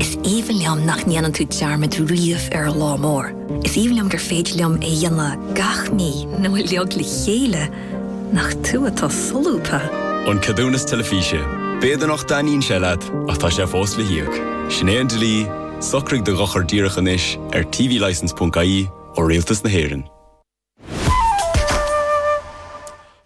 Is aoibhinn liom nach ndéanann tú dearmad riamh ar an lá mór. Is aoibhinn liom gur féidir liom é a dhéanamh gach mí nó uilig le chéile, nach tú atá solúbtha? An Ceadúnas Teilifíse. B'fhéidir nach dtaitníonn sé leat, ach tá sé fós le híoc. Sin é an dlí, socraigh do dhochar díreach anois ar tvlicence.ie ó Rialtas na hÉireann.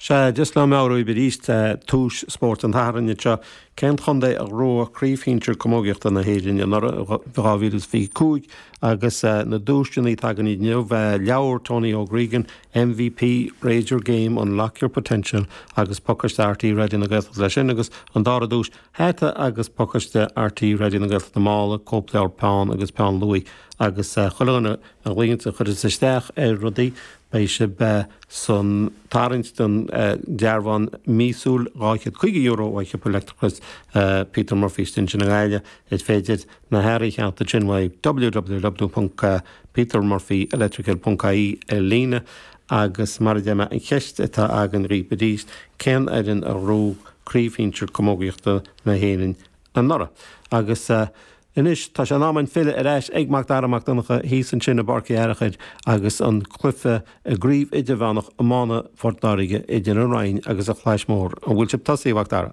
Sea, just le meabhrú dhaoibh arís le tús Spórt an tSathairn anseo cén chontae a ghnóthaigh craobh shinsir camógaíochta na hÉireann anuraidh, 2025, agus na duaiseanna atá againn inniu, leabhar Tony O'Gregan, MVP, Raise Your Game, Unlock Your Potential agus pacáiste RTÉ Raidió na Gaeltachta leis sin agus an dara duais, hata agus pacáiste RTÉ Raidió na Gaeltachta mála, cóipleabhar, peann agus peann luaidh agus chuile dhuine. dhuine a chuireas isteach ar rudaí, beidh sibh san tarraingt don dearbhán míosúil €250 ó Shiopa Leictreachais Peter Murphy istigh ansin i nGaillimh. Is féidir na hearraí a cheannacht ansin uaidh www.petermurphyelectrical.ie ar líne. Agus mar a deir mé, an cheist atá againn dhaoibh arís, cén fhoireann a ghnóthaigh craobh shinsir camógaíochta na hÉireann anuraidh? Agus. Anois tá sé in am againn filleadh ar ais ag Macdara Mac Donncha thíos ansin i bPáirc Uí Fhearchair agus an cluiche i gCraobh Idirmheánach Iomána Phort Láirge idir An Rinn agus An Chlais Mhór. An bhfuil sibh tosaithe, a Mhacdara?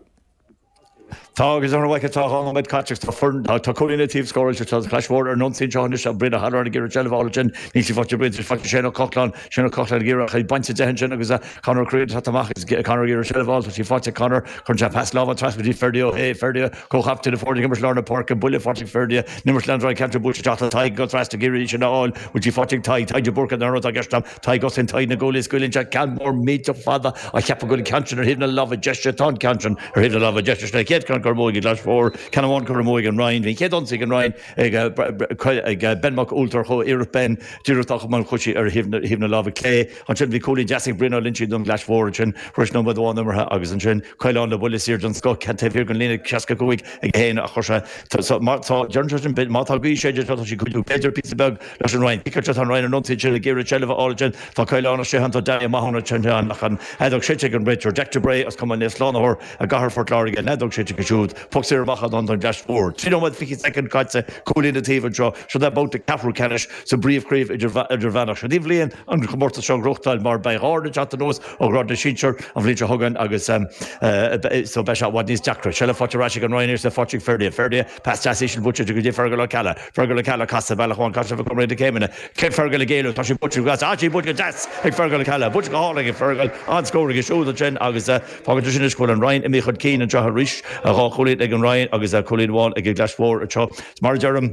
Tá agus an bhfaic atá dhá nóiméad caite agus tá foireann, tá cúilín an taobh scóráilte agus tá an Chlais Mhór ar an ionsaí anseo anois ach Brian Ó hEaráin ag iarraidh seilbh a fháil ansin, níl sí faighte ag Brian, faighte ag Shane Ó Cochláin, Shane Ó Cochláin ag iarraidh a bhaint de ansin agus Conor Ó Creed thart amach agus Conor ag iarraidh seilbh a fháil, tá sí faighte ag Conor, cuireann sé pas láimhe trasna go dtí Ferdie Ó hAodha, Ferdie. Comhchaptaen na foirne ag imirt lár na páirce, buille faighte ag Ferdie, n-imirt Leandrai Cairtear buailte isteach go Tadhg agus Rasta ag iarraidh sin a fháil bhfuil sí faighte ag Tadhg, Tadhg de Búrca an urra atá i gceist agam, Tadhg ansin Tadhg na goalie scaoileann sé ceann mór millteach fada á cheapadh go bhfuil an ceann sin ar thaobh na láimhe deise tá an ceann sin ar thaobh na láimhe deise sin an chéad ceann curtha amú ag an gClais Mhór ceann amháin curtha amú ag an Rinn bhí an chéad ionsaí ag an Rinn ag Ben Mac Ualltar chuaigh iarracht Ben díreach dá chumann chuaigh sí ar thaobh na láimhe clé. Ansin bhí cúilín deas ag Brian Ó Loinsigh don Chlais Mhór ansin tar éis nóiméad amháin imeartha agus ansin cúilín le buille saor den scoth ceann taobh thiar den líne 65 ag 1 a chuir sé so má tá deireann sé sin má tá gaoth ag séideadh tá sí ag cuidiú b'fhéidir píosa beag leis an Rinn Pickett tá an Rinn ar an ionsaí ansin ag iarraidh seilbh a fháil ansin tá Coileán as sé thánn tá Danny Mahon ansin ach an fheadóg séidte ag an réiteoir Jack de Bray as cumann Naomh Slánathóir i gcathair Phort Láirge an fheadóg séidte aige siúd Poc saor amach ansin don Chlais Mhór. Trí nóiméad fiche soicind caite, cúilín an taobh anseo. Seo é babhta ceathrú ceannais sa bpríomhchraobh idirmheánach. Seo í an bhliain an comórtas seo a ghnóthachtáil mar beidh dhá fhoireann ag teacht anuas ó ghrád na sinsear an bhliain seo chugainn agus so beidh sé i bhfad níos deacra. Seilbh faighte ar ais ag an Rinn arís, faighte ag Ferdie. Ferdie, pas deas íseal buailte go dtí Fergal Ó Ceallaigh. Fergal Ó Ceallaigh, casadh bealach amháin, casadh ag comhaireamh na céimeanna. Sin Fergal ag éalú, tá sí buailte go deas, tá sí buailte go deas ag Fergal Ó Ceallaigh. Buailte go hálainn ag Fergal, an-scór aige siúd ansin agus. Fágann sé sin anois go bhfuil an Rinn imithe chun cinn anseo arís, dhá chúilín ag an Rinn agus cúilín amháin ag an gClais Mhór anseo. Mar a deirim,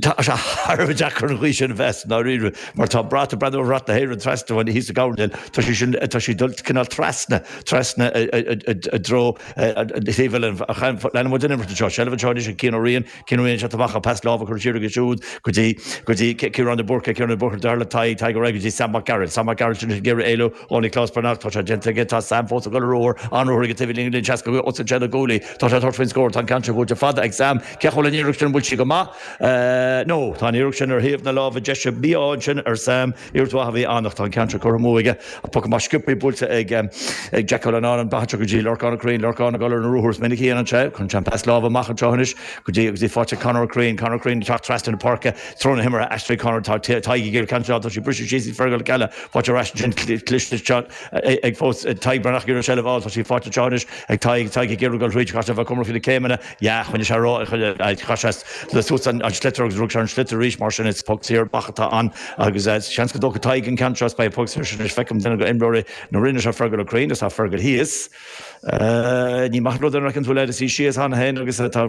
tá sé thar a bheith deacair an ghaoth sin a mheas i ndáiríre mar tá mé ag breathnú ar bhrat na hÉireann trasna uainn thíos sa ngabhal, tá, tá sí sin, tá sí ag dul cineál trasna, trasna i dtreo taobh eile an, leanann muid an imirt anseo, seilbh anseo anois ag Cian Ó Riain, Cian Ó Riain ansin amach agus pas láimhe curtha siar aige siúd go dtí go dtí Ciarán de Búrca, Ciarán de Búrca deartháir le Tadhg, Tadhg ar aghaidh go dtí Sam Mac Gearailt, Sam Mac Gearailt anois ag iarraidh éalú ó Nioclás Breathnach, tá sé déanta aige, tá Sam fós ag dul ar ruathar, an-ruathar aige go dtí an líne, líne seasca os cionn na gcúilíní, tá sé ag tabhairt faoin scór, tá an ceann seo buailte fada ag Sam, cén chaoi a bhfuil an iarracht sin, an bhfuil sí go maith? No tá an iarracht sin ar thaobh na láimhe deise, mí-ádh ansin ar Sam. Iarracht mhaith a bhí ann ach tá an ceann seo curtha amú aige. An poc amach sciobtha buailte ag Jack Cullinane, an bealach go dtí Lorcán Ó Cuirrín. Lorcán ag dul ar na ruathair is minic a dhéanann sé. Cuireann sé an pas láimhe amach anseo anois go dtí agus í faighte ag Conor Ó Cuirrín. Conor Ó Cuirrín ag teacht trasna na páirce. Treo na himeartha athraithe ag Conor. Tá Tadhg ag iarraidh ceannstáil. Tá sí briste síos ag Fergal Ó Ceallaigh. Fáilte ar ais ansin cliste ag fós ag Tadhg Breathnach ag iarraidh seilbh a fháil. Tá sí faighte anseo anois ag Tadhg. Tadhg ag iarraidh dul thríd. Chaithfeadh sé bheith cúramach faoi na céimeanna. Ya, choinnigh sé ró, chaith sé le suas an sliotar agus rug sé an sliotar arís, mar sin is poc saor amach atá ann agus seans go dtógfaidh Tadhg an ceann seo is beidh an poc saor sin anois. Feicim duine d'imreoirí na Rinne seo, Fergal Ó Cuirrín, is tá Fergal thíos. Ní maith an rud é an raibh tú le is í síos ann féin agus tá